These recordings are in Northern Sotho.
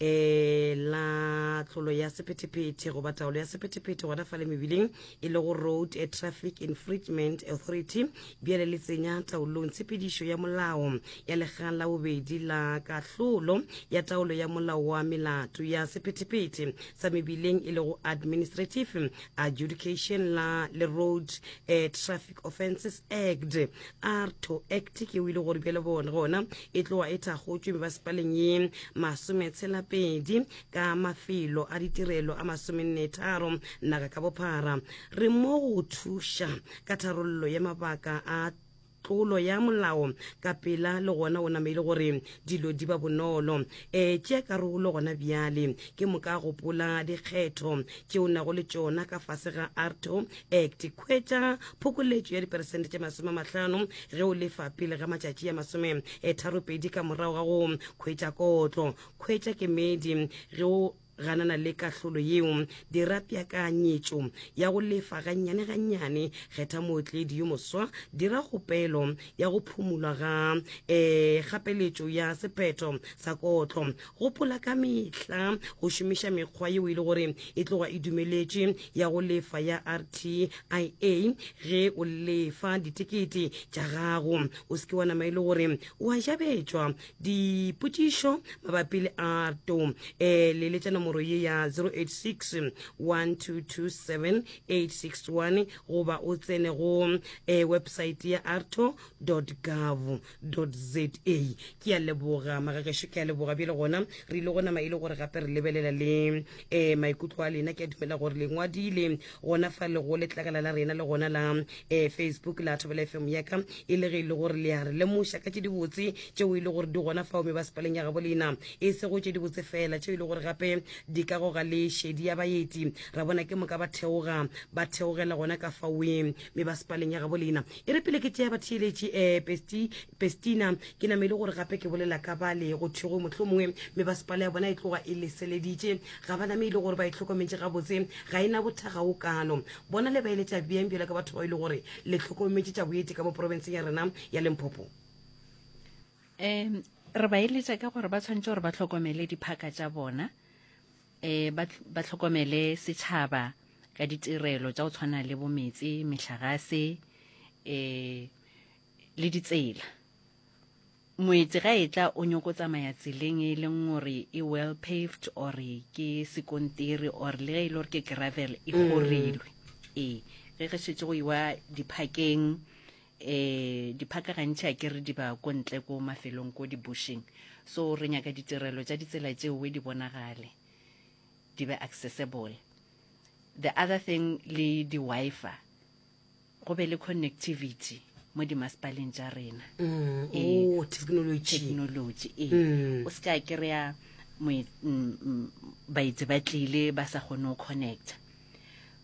eh la tlolo ya sephethephethe goba taolo ya sephethephethe gona fa le mebileng e lego road a traffic infringement authority bjale le tsenya taolong tshepedišo ya molao ya lekgang la bobedi la kahlolo ya taolo ya molao wa melato ya sephethephethe sa mebileng e lego administrative adjudication la le road a traffic offences act arto act ke o ile gore bjale bone gona e tloa e thakgotšwe mebasepaleng ye masometshela-pedi ka mafelo a ditirelo a masomennetharo naga ka bophara re mo go thuša ka tharollo ya mabaka a tlolo ya molao ka pela le gona o nameile gore dilo di ba bonolo um eh, tše karolo gona bjale ke moka gopola dikgetho tše o nago le tšona ka fase ga arto act kgwetša phokoletšo ya diperesente tše masome mahlano ge o lefa pele ga matšatši ya masome e tharopedi ka morago ga go kgwetša kotlo kgwetša kemedi ge o ganana le kahlolo yeo dira peakanyetšo ya go lefa gannyane gannyane kgetha mootledi yo moswa dira kgopelo ya go phumulwa ga um gapeletšo ya sephetho sa kotlo Gopola ka mehla go šomiša mekgwa yeo e le gore e tloga e dumeletše ya go lefa ya RTIA ge o lefa ditekete tša gago. O se ke wa nama e le gore o a jabetšwa. Dipotšišo mabapi le ARTO, e leletša nomoro ye ya 086 1227 861 goba o tsene go e websaete ya arto dot gov. za ke a leboga magagešo ke a leboga bjele gona re ile go nama e le gore gape re lebelela le um maikutlo a lena ke a dumela gore le ngwadile gona fa le go letlakala la rena le gona la um facebook la thobela fm yaka e le ge e le gore le a re lemoša ka tše dibotse tšeo e le gore di gona fao me ba sepaleng ya gabo lena e sego tše dibotse fela tšeo e le gore gape di ka goga le šedi ya baeti ra bona ke moka ba theoga ba theogela gona ka faoeng me ba sepaleng ya gabo lena E re pele ke tšea batheeletši, ee, Pesti, Pestina, ke name e le gore gape ke bolela ka bale go thwego mohlomongwe, mme basepala ya bona e tloga e leseleditše. Ga ba name e le gore ba e hlokometše gabotse, ga e na bothaga go kalo. Bona le ba eletša bjang bjalo ka batho bao e le gore le hlokometše tša boeti ka mo porobenseng ya rena ya Limpopo? Ee, re ba eletša ka gore ba tshwanetše gore ba hlokomele diphaka tša bona, e ba ba tlhokomele setšhaba ka ditirelo tša go tshwana le bometse mehlagase e le ditsela moetse ga e tla o nyoko tsamaya tseleng e leng gore e well paved or ke sekontiri or le ge e le gore ke gravel e mm. gorilwe ee ge re šetse go iwa diphakeng eh diphaka gantši a kere di ba ko ntle ko mafelong ko dibushing so re nyaka ditirelo tša ditsela tšeo di bonagale di be accessible the other thing le di-wifi go be le connectivity mo dimasepaleng tša rena mm, ee, oh, technology ee mm. o se ka kry-a mm, baetse ba tlile ba sa kgone go connecta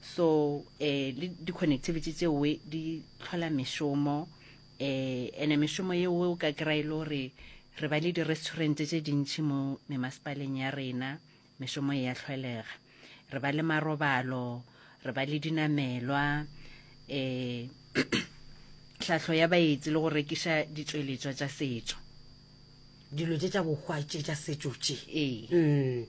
so eh le di connectivity tse we di tlhola mešomo eh ene mešomo ye we o ka kra ile gore re ba le di restaurant tse dintši mo memaspaleng ya rena mešomo e ya tlholega re ba le marobalo re ba le dinamelwa eh tlhahlo ya baetsi le go rekiša ditšweletšwa tša setšo dilo tše tša bohwa tše tša setšo tše ee mm.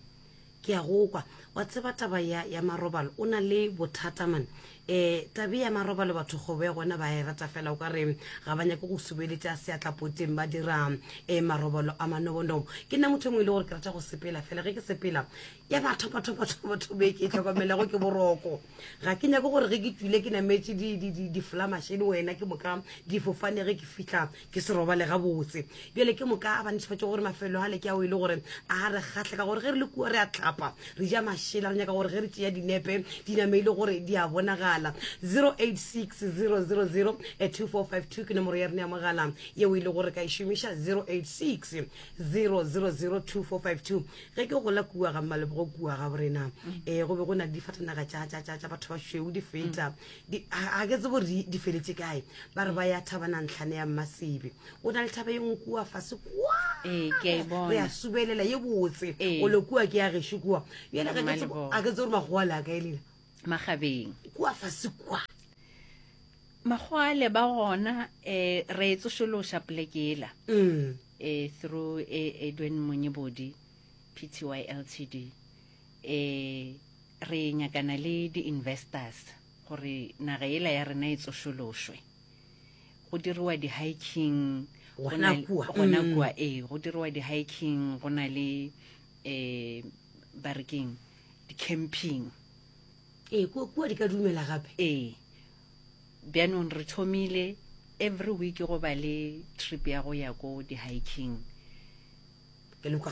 Ke a go kwa. Wa tseba taba ya, ya marobalo, o na le bothata man. E, tabe ya marobalo batho kgobo ya gona ba e rata fela o ka re ga ba nyake go subeletša seatlapoteng ba dira e, marobalo a manobonobo. Ke nna motho e mongwe e le gore ke rata go sepela fela ge ke sepela ya ba thopa thopa thopa thopa e ke e tlhokomelago ke boroko. Ga ke nyake gore ge ke tšwile ke nametše di, di, di, diflamaše le wena ke moka difofane ge ke fihla ke se robale gabotse bjale ke moka a ba netefatša gore mafelo a le ke ao e le gore a re kgatlhe ka gore ge re le kua re a tlapa re ja mašela re nyaka gore ge re tšea dinepe di name e le gore di a bonagala 0860002452 eh, ke nomoro ya rena ya mogala yeo e le gore ka e šomiša 0860002452 ge ke gola kua ga mmalebogo kua ga borena um go be go na le difatanaga tša batho ba šweu di feta ga ke tse gore di feletse kae ba re ba ya thaba na ntlhane ya mmasebe o na le thaba ye ngwe fase kwa ee, re ya subelela ye botse ee. o le kua ke ya gesho kua yone ga ke tse gore makgowa le a kae lela magabeng kua fase kwa magwale ba gona eh re tsošološa plekela mm eh through eh Edwin Monyebodi PTY Ltd eh Re nyakana le di-investors gore naga yela ya rena e tsošološwe. Go diriwa di-hiking gona kua, gona mm. kua ee, go diriwa di-hiking go na le um ba re keng di-camping ee kua di ka dumela gape ee bjanong re thomile every week go ba le trip ya go ya ko di-hiking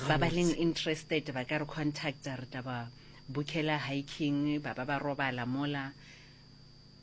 ba ba leng interested ba ka re contacta re taba bukela hiking ba ba ba robala mola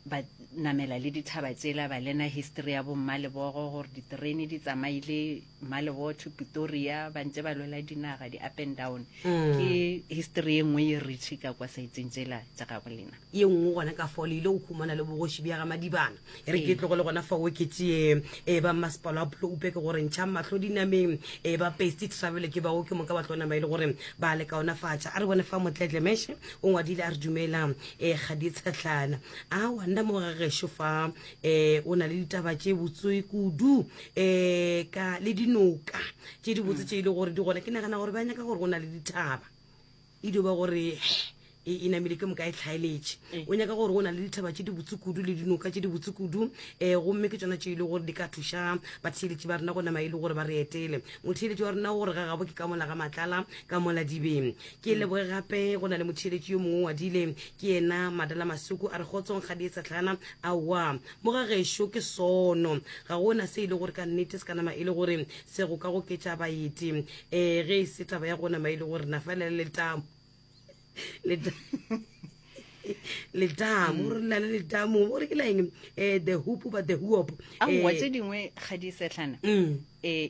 ba namela le dithaba tsela ba lena history ya bommalebogo gore diterene di tsamaile mmalebogo to pitoria ba ntse ba lwela dinaga di-up and down mm. ke history e nngwe ye retšhi ka kwa saitseng tsela tsa gago lena ye nngwe gona ka fole ile go khumana le bogoši bja ga madibana e re ke tlogole gona fa o ke tseye e ba mmasepalo a pulo upe ke gore ntšha matlho dinameng e ba pesti travel ke bao ke moka ba tlo nama e le gore ba le kaonafatša a re bone fa motletle meshe o ngwadile a re dumela e ga di tshetlana a wa nna mo gagesho fa e o na le ditaba tše botsoe kudu e ka le dinoka tše di botse tše e le gore di gona ke nagana gore ba nyaka gore o na le dithaba E dio ba gore e, e namile ke moka e tlhaeletše. O nyaka gore o na le dithaba tše dibotse kudu le dinoka tše dibotse kudu, um gomme ke tšona tše e le gore di ka thuša batheeletši ba rena go nama e le gore ba re etele. Motheeletši wa rena o gore ga gabo ke ka mola ga matlala, ka mola dibeng. Ke leboge gape go na le motheeletši yo mongwe wa dile, ke yena Madala Masuku, a re kgotsong ga di e tshatlhana, aowa. Mo ga gešo ke sono, ga go na se e le gore ka nnete se ka nama e le gore se go ka goketša baeti. ee ge e se taba ya gona maile gore na fela le letamo letamo gore na le letamo gore ke laeng um eh, the hoop ba the hoop aowa eh, tse dingwe ga di setlhana um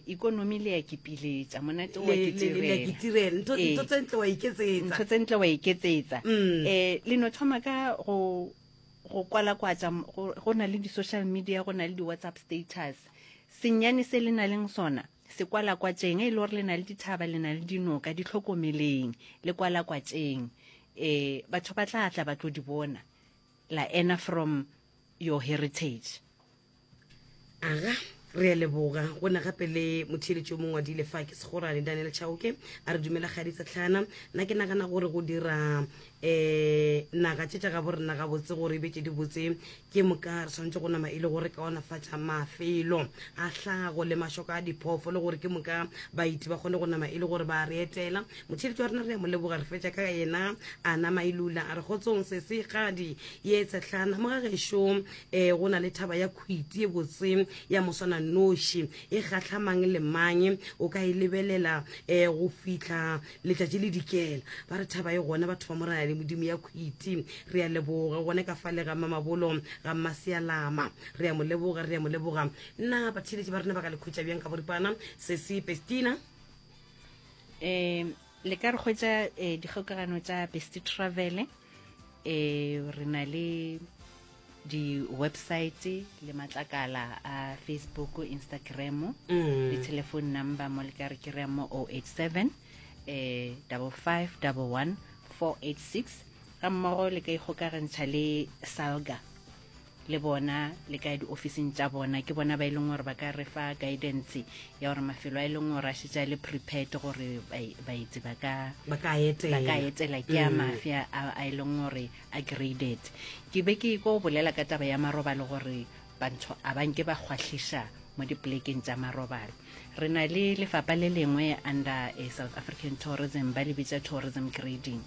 ikonomi le ya kipiletsa monate wa kitirelantho eh, tse ntle wa iketsetsantho tse ntle wa iketsetsa um mm. le no thoma ka go go kwala kwatsa go na le di-social media go na le di-whatsapp status senyane se le na leng sona Sekwalakwatšeng, e le gore le na le dithaba, le na le dinoka, di hlokomeleng, le kwalakwatšeng. E, batho ba tla tla ba tlo di bona, la ena from your heritage. Aga, re a leboga. Go na gape le motheeletši o mongwe wa dilefa ke segorane Daniel Chauke a re dumela kgaditsa Tlhana. Nna ke nagana gore go dira um naga tše tša gabo rena gabotse gore e be tše di botse ke moka re tshwanetse go nama e le gore kaonafatša mafelo a hlago le mašoko a diphofo le gore ke moka baiti ba kgone go nama e le gore ba re etela motšheletši wa rena re ya mo leboga re fetša ka yena a nama e lula a re kgotsong se se gadi ye tsetlhana mo ga gešo um go na le thaba ya khwiti e botse ya moswana noši e kgatlhamang le mang o ka e lebelela um go fitlha letšatši le dikela ba re thaba e gona batho ba moraya le modimo ya khwiti re ya leboga gone ka fale ga mamabolo ga mmasealama re ya mo leboga re ya mo leboga nna batheletši ba rena ba ka le khwetša bjang ka boripana sesi pestina um le ka re kgwetsa um eh, dikgokagano tsa best travel um eh, re na le di-website le matlakala a facebook instagram mm. le telephone number mo le ka re kry-a mo 087 eh, 5511 486 ga mmogo le ka ikgokagantšha le salga le bona le ka diofising tša bona ke bona ba e leng gore ba ka re fa guidance ya gore mafelo a e leng gore a šetša le prepared gore baetsi ba ka etela ke a mm. mafia a e leng gore Agreedet. Ke be ke ko bolela ka taba ya marobalo gore bantsho a ba nke ba kgwahliša mo dipolekeng tša marobalo re na le lefapa le lengwe under a south african tourism ba le bitsa tourism grading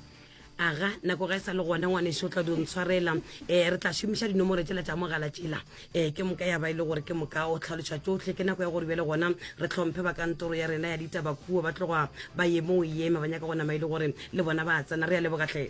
aga nako ga e sa le gona ngwaneso tla dio ntshwarela um eh, re tla šomiša dinomore tsela tša mogala tsela um ke moka ya ba e le gore ke moka o tlhaloša tsotlhe ke nako ya gore bjale gona re tlhomphe ba kantoro ya rena ya ditabakuo ba tloga ba ye mo o eme ba nyaka go nama e le gore le bona ba tsena re ya lebogatlhe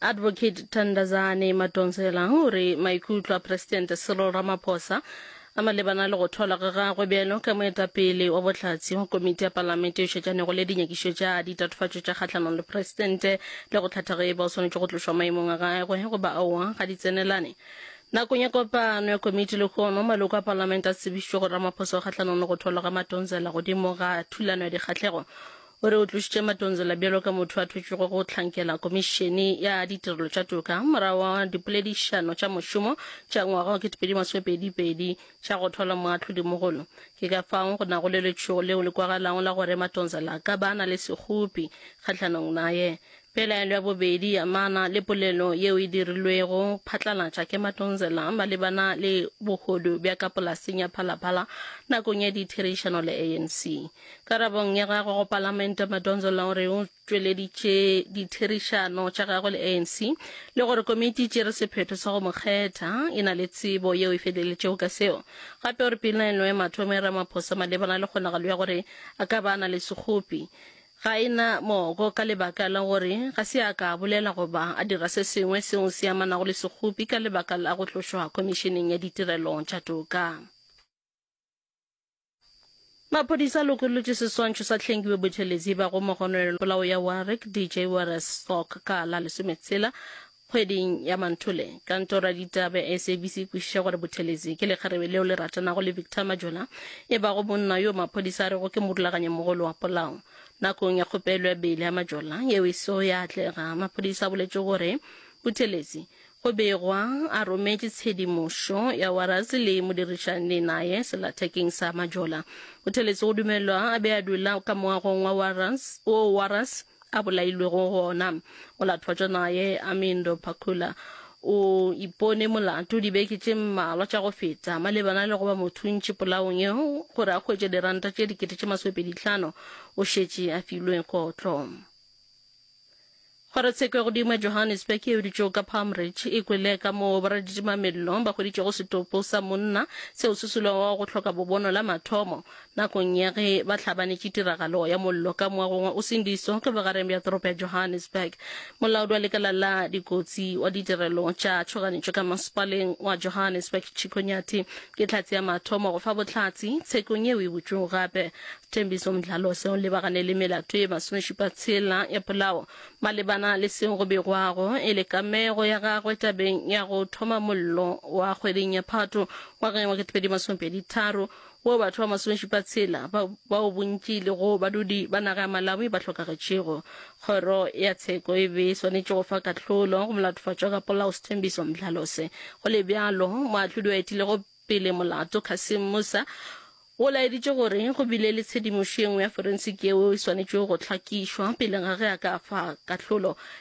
Advocate Thandazani Madonselang o re maikutlo a Presidente Cyril Ramaphosa a malebana le go tholwa ga gagwe bjalo ka moetapele wa bohlatse go komiti ya palamente e šetšanego le dinyakišo tša ditatofatšo tša kgahlanong le Presidente le go hlatha ge e ba o swanetše go tlošwa maemong a gagwe goba aowa ga di tsenelane. Nakong ya kopano ya komiti lehono, maloko a palamente a tsebišitšwe go Ramaphosa o kgahlanong le go tholwa ga Madonsela godimo ga thulano ya dikgahlego O re o tlošitše Madonsela bjalo ka motho a thotšwego go hlankela Komišene ya Ditirelo tša Toka morago wa dipoledišano tša mošomo tša ngwaga wa 2022 tša go thola moahlodimogolo. Ke ka fao go nago le letšhogo leo le kwagalago la gore Madonsela a ka ba a na le sekgopi kgahlanong naye. Pelaelo ya bobedi e amana le polelo yeo e dirilwego phatlalatša ke Matonzela malebana le bohodu bja ka polaseng ya Phalaphala nakong ya ditherišano le ANC. Karabong ya gagwe go Palamente, Matonzela o re o tšweleditše ditherišano tša gagwe le ANC le gore komiti e tšere sephetho sa go mo kgetha e na le tsebo yeo e feleletšego ka seo. Gape o re pelaelo ya mathomo ya Ramaphosa malebana le kgonagalo ya gore a ka ba a na le sekgopi Ga e na moko ka lebaka la gore ga se a ka a bolela goba a dira se sengwe seo se amanago le sekgopi ka lebaka la go tlošwa Khomišeneng ya Ditirelo tša Toka. Maphodisa a lokolotše seswantšho sa Hlengiwe Buthelezi ba go mo gononela polao ya Warwick DJ Wares Stock ka la lesometshela Kgweding ya Manthole, kantoro ya ditaba ya SABC e kwešiša gore Buthelezi ke lekgarebe leo le ratanago le Victor Majola, e bago monna yo maphodisa a rego ke morulaganyimogolo wa polao. Nakong ya kgopelo ya beile ya Majola yeo e sego ya atlega, maphodisa a boletše gore Buthelezi go begwa a rometše tshedimošo ya Warras le modirišani naye selathekeng sa Majola. Buthelezi go dumelwa a be a dula ka moagong wa Warras, wo Warras a bolailwego gona go lathwa tša naye Amindo Pakula o ipone molato dibeke tše mmalwa tša go feta malebana le go ba mothuntši polaong yeo gore a hwetše diranta tše dikete tše masomepeditlhano o šetše a filwe kotlo kgorotsheko ya godimo ya johannesburg e dutšego ka palm ridge e kwele ka moo boraditimamellong ba hweditšego setopo sa monna seo se sulego go hloka bobono la mathomo Nakong ya ge ba hlabanetše tiragalo ya mollo ka moagong wa Usindiso ka bogareng bja toropo ya Johannesburg, molaodi wa lekala la dikotsi wa ditirelo tša tšhoganetšo ka masepaleng wa Johannesburg Chicco Nyathi ke hlatse ya mathomo go fa bohlatse tshekong yeo e butšwego gape Thembiso Mdlalose o lebagane le melato e masomešupa tshela ya polao malebana le seo go begwago e le kamego ya gagwe tabeng ya go thoma mollo wa kgweding ya Phato ngwageng wa 2023 Go batho ba masomešupa tshela ba, bao bontši e lego badudi ba naga ya Malawi ba hlokagetšego, kgoro ya tsheko e be e swanetše go fa kahlolo go molatofatšwa ka polao Sthembiso Mdlalose. Go le bjalo, moahlodi wa etilego pele molato Cassim Musa o laeditše gore go bile le tshedimošo ye nngwe ya forensic yeo e swanetšego go hlakišwa pele ga ge a ka fa kahlolo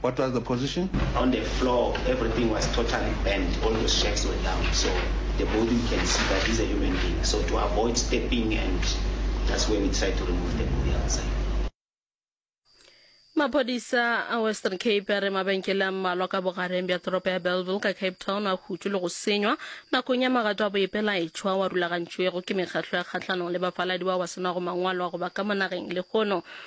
What was the position? On the floor, everything was totally bent. All the shacks were down. So the body, you can see that is a human being. So to avoid stepping, and that's where we tried to remove the body outside. maphodisa a western cape a re mabenkele a mmalwa ka bogareng bja toropo ya bellville ka cape town a hutšwe le go senywa nakong ya magato a boepelaetšhwa wa rulagantšwego ke mekgahlo ya kgahlanong le bafaladi bao ba senago mangwalo a go ba ka monageng lehono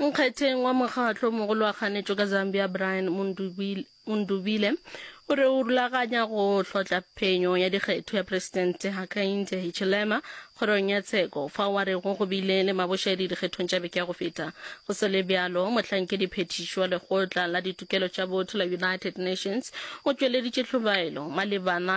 nkgetheng wa mokgatlo mogolo wa kganetšo ka zambia brian mundubile o re o rulaganya go hlotla phenyo ya dikgetho ya presidente hakainde hichilema kgorong ya tsheko fa wa rego go bile le mabošedi dikgethong tša beke ya go feta go se le bjalo mohlankedi phethiši wa lekgotla la ditokelo tša botho la united nations o tšweleditše tlhobaelo malebana